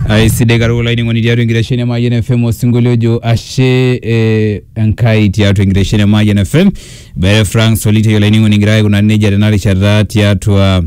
aisidai katukul olainining'oni tiatua enkitesheni e Mayian FM osinkolio ojo ashe eh, Enkai tiatua enkitesheni e Mayian FM Bere Frank Solitei olainining'oni egira aikunari nejia tena rishata tiatua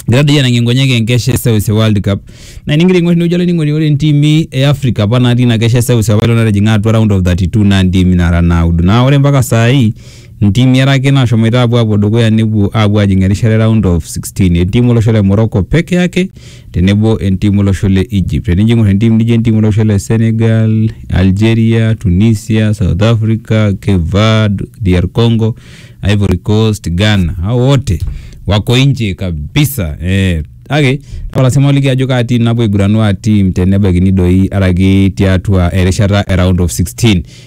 egira doi anang'ie nkonyek enkesha e seuse world cup na enigira aing'or inewueji olainining'oni ore ntimi e africa apa natii ina kesha e seuse apailong natijing'a atua round of 32 naa ntimi nara naudo naa ore mpaka saai Ntimi are ake naashomoita aapuo aapuo dukuya nepuo aapuo aajing erishata e round of 16, entim olosho le Morocco peke ake tenebo entim olosho le Egypt. Tenijo aing'or entim nijo entim olosho le Senegal, Algeria, Tunisia, South Africa, Cape Verde, DR Congo, Ivory Coast, Ghana, hao wote wako nje kabisa eh. Kake tapala sii maaliki ajo kaa tim napuo aiguranu aa tim tenebaikini doi araki tiatua erishata e round of 16.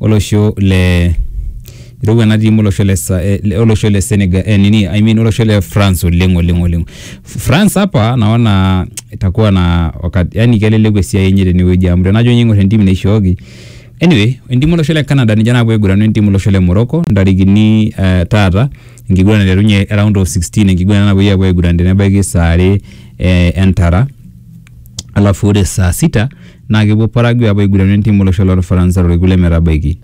olosho le irowua ena tim olosho le Sa- eh, le- olosho le Senegal eh, nini I mean olosho le France oleng oleng oleng. F- France hapa naona itakuwa na wakati yani keleleku esiai enye tenewueji amu tenajo ninye ing'or entim naishooki anyway entim olosho le Canada ninche naapuo aiguranu entim olosho le Morocco ntarikini eh, taata enkiguran naiterunye round of 16 enkiguran napuoi apuo aiguran tenebaiki saa are eh, entara alafu ore saa sita naa kepuo Paraguay apuo aigurana entim olosho loo Lfaransa torkekun le metabaiki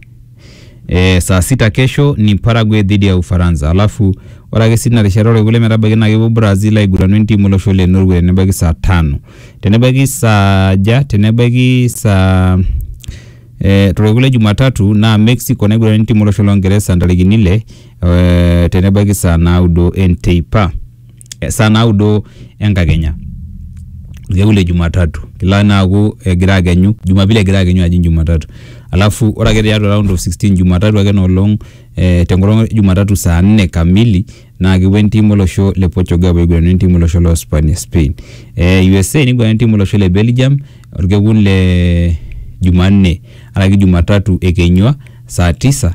ee saa sita kesho ni Paraguay dhidi ya Ufaransa alafu ore ake sii tina rishata orkekun le metabaiki naa kepuo Brazil aigurana entim olosho le Norway tenebaiki saa tano tenebaiki saa aja tenebaiki saa ee torkekun le Jumatatu naa Mexico naigurana entim olosho loo Ngeresa ntarikini ile ee tenebaiki saa naudo enteipa. saa naudo enkakenya orkekun le jumatatu kelo naa aaku egira akenyu jumapili egira akenyu ajing jumatatu alafu ore ake tiatua round of sixteen jumatatu ake ina olong eh tenkolong e jumatatu saa nne kamili naa kepuo entim olosho le portugal apuo aiguran wentim olosho lo spania spain eh usa niguran wentim olosho le belgium orkekun le jumanne araki jumatatu ekenyua saa tisa.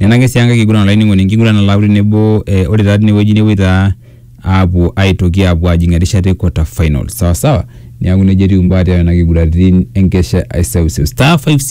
Nena ake sii enkae kiguran olainining'oni, enkiguran nalautu tenebo eh ore taa tinewueji nepuoi taa apuo aitoki apuo ajing' erishata e quarter finals sawasawa, neeku nejia etiu imbaa tiatua nena kiguratin enkesha e seuseu. Star five six